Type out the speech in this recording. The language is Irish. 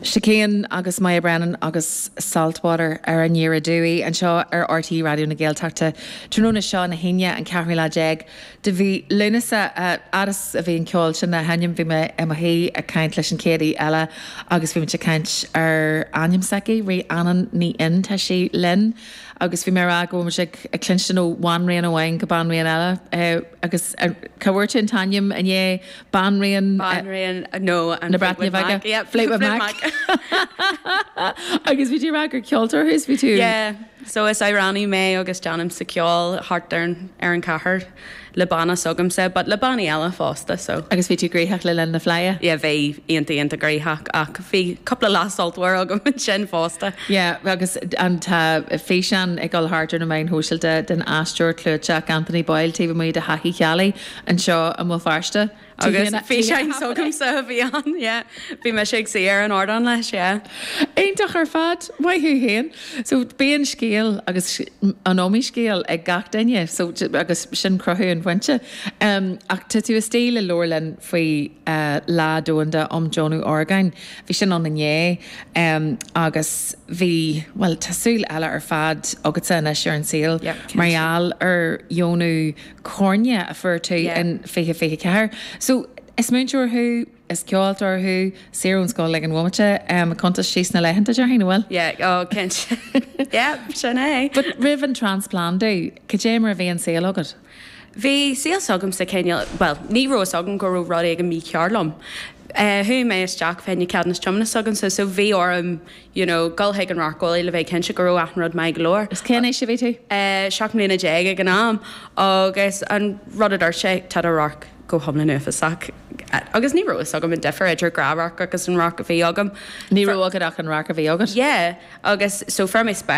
Chicane agus Moya Brennan agus Saltwater ar an Ghaoth Aduaidh anseo ar RTÉ Raidió na Gaeltachta tráthnóna seo na hAoine an ceathrú lá déag de mhí Lúnasa. Fhad is a bhí an ceol sin á sheinm bhí mé i mo shuí ag caint leis an chéad aoi eile agus bhí muid ag caint ar ainm s'aici, Rhiannon Ní Fhinn, tá sí linn agus bhí mé ag rá go bhfuil muid ag cluinstin ó bhanríon amháin go banríon eile agus cá bhfuair tú an t-ainm inné? Banríon na Breataine Bige nó Fleetwood Mac. Yeah, Fleetwood Mac. Agus bhí tú ag rá gur ceoltóir thú, is bhí tú. Yeah, so is amhránaí mé agus déanaimse ceol thart ar an, ar an chathair le banna s'agamsa but le bannaí eile fosta so. Agus bhí tú gnoitheach le linn na Fleidhe? Yeah, bhí, iontach, iontach gnoitheach ach bhí cúpla lá sultmhar agam ansin fosta. Yeah, agus an, tá físeán ag dul thart ar na meáin shóisialta den aisteoir clúiteach Anthony Boyle taobh amuigh de Thigh Uí Cheallaigh. anseo i mBéal Feirste agus físeáin s'agamsa a bhí ann, yeah. Bhí mise ag suí ar an ardán leis, yeah. Iontach ar fad! Maith thú féin. So bíonn scéal agus an iomaí scéal ag gach duine so agus sin cruthú an phointe. Ach tá tú istigh le labhairt linn faoi Lá Domhanda um Dheonú Orgán. Bhí sin ann inné agus bhí, bhuel tá súil eile ar fad agatsa anois ar an saol mar gheall ar dheonú. Coirne a fuair tú in 2024. So, is múinteoir thú, is ceoltóir thú, saor ón scoil ag an bhomaite, cuntas síos na laethanta, déarfainn, an bhfuil? Yeah, oh, cinnte. Yep, sin é. But roimh an transplandú, cad é mar a bhí an saol agat? Bhí saol s'agam sa, cineál, bhuel, ní raibh fhios agam go raibh rud éigin mícheart liom. Chuaigh mé isteach fá choinne ceadúnas tiomána s'agam-sa, so bhí orm, You know, dul chuig an radharceolaí le bheith cinnte go raibh achan rud maith go leor. Is cén aois a bhí tú? Seacht mbliana déag ag an am agus an rud a dúirt sé, tá do radharc go hiomlán uafásach agus ní raibh fhios agam an difear idir gnáthradharc agus an radharc a bhí agam. Ní raibh agat ach an radharc a bhí agat? Yeah, agus so fuair mé spéaclaí.